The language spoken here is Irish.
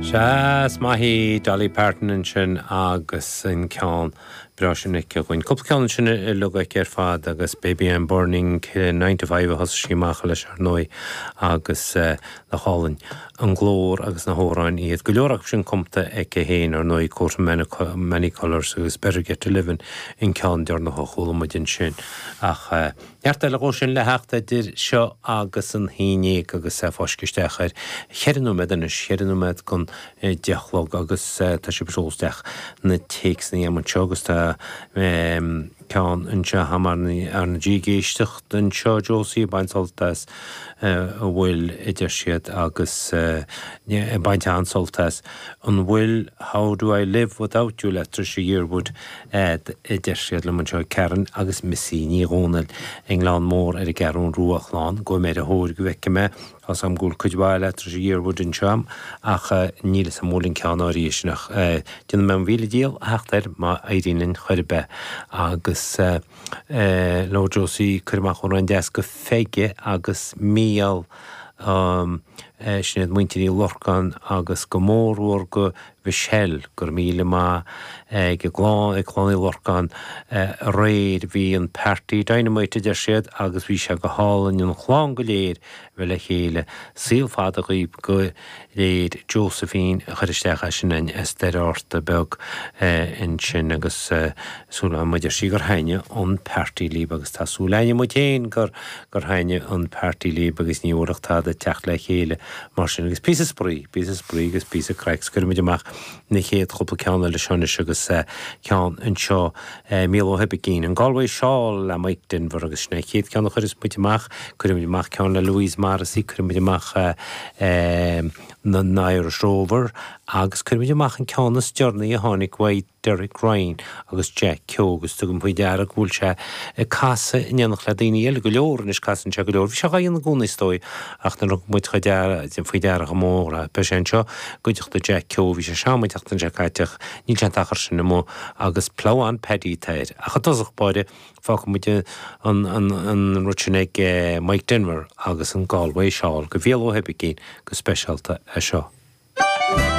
Nach maith í Dolly Parton ansin agus an ceann breá sin aici dhúinn. Cúpla ceann ansin uilig aici ar fad agus Baby I'm Burning, Nine to Five a thosaigh sí amach leis ar ndóigh agus nach álainn an glór agus na hamhráin atá aici, go leor acu sin cumtha aici féin ar ndóigh, Coat of Many Colours agus Better Get to Livin' an ceann deireanach a chuala muid ansin ach. Neart eile dhóibh sin le theacht idir seo agus an Aoine agus é fáiscthe isteach ar cheithre nóiméad anois, cheithre nóiméad chun a deich a chlog agus tá sibh ag seoladh isteach na téacsanna a'am anseo agus tá ceann anseo a'am ar ndóigh ag éisteacht anseo, Josie, ag baint sult as an bhfuil a deir siad agus ag baint an-sult as, an bhfuil How do I live without you le Trisha Yearwood. a deir siad liom anseo ag Karen agus Missy Ní Dhomhnaill i nGleann Mór ar an gCeathrún Rua, a chlann, gabhfaidh mé ar a thóir go bhfeicfidh mé, tá 's agam go bhfuil cuid mhaith le Trisha Yearwood anseo ach níl fhios agam an bhfuil an ceann áirithe sin ach déanfaidh mé mo mhíle dícheall a theacht air má éiríonn linn chor ar bith agus labhair Josie, cuir amach amhrán deas go Pheige agus Mícheál, Sinéad, Muintir Uí Lorcáin agus go mór mhór go Mhichelle, Go raibh míle maith agat, ag Clann Uí Lorcáin aréir. Bhí an party dynamite a deir siad agus bhí sé go hálainn an chlann go léir a bheith le chéile. Saol fada dhaoibh go léir. Josephine a chuir isteach é sin an t-iarratas beag ansin agus súil agam a deir sí gur thaitnigh an party libh agus tá súil a'inne muid féin gur gur thaitnigh an party libh agus ní bhuailfeadh tada a theacht le chéile mar sin. Agus píosa spraoi, píosa spraoi agus píosa craic 's cuirfimid amach na chéad chúpla ceann eile seo anois agus ceann anseo, Viola Uí Oibicín, An Galway Shawl le Mike Denver agus sin é an chéad ceann a chuirfidh muid amach. Cuirfimid amach ceann le Louise Morrissey, cuirfimid amach An Irish Rover agus cuirfimid amach an ceann is deireanaí a tháinig uaidh, Derek Ryan agus Jack Keogh, agus tugaim faoi deara go bhfuil sé ag casadh in éineacht le daoine eile go leor anois, casann sé go leor, bhí sé dhá dhéanamh i gcónaí is dóigh ach nuair a thug muid faoi deara go mór é, an píosa seo i gcuideachta Jack Keogh, bhí sé seal an tseachtain seo caite ach níl sé an t-achar sin amuigh agus Ploughman Paddy atá air. Ach i dtosach báire fágfaidh muid an t-amhrán ag Mike Denver agus an Galway Shawl go Viola Uí Oibicín go speisialta é seo.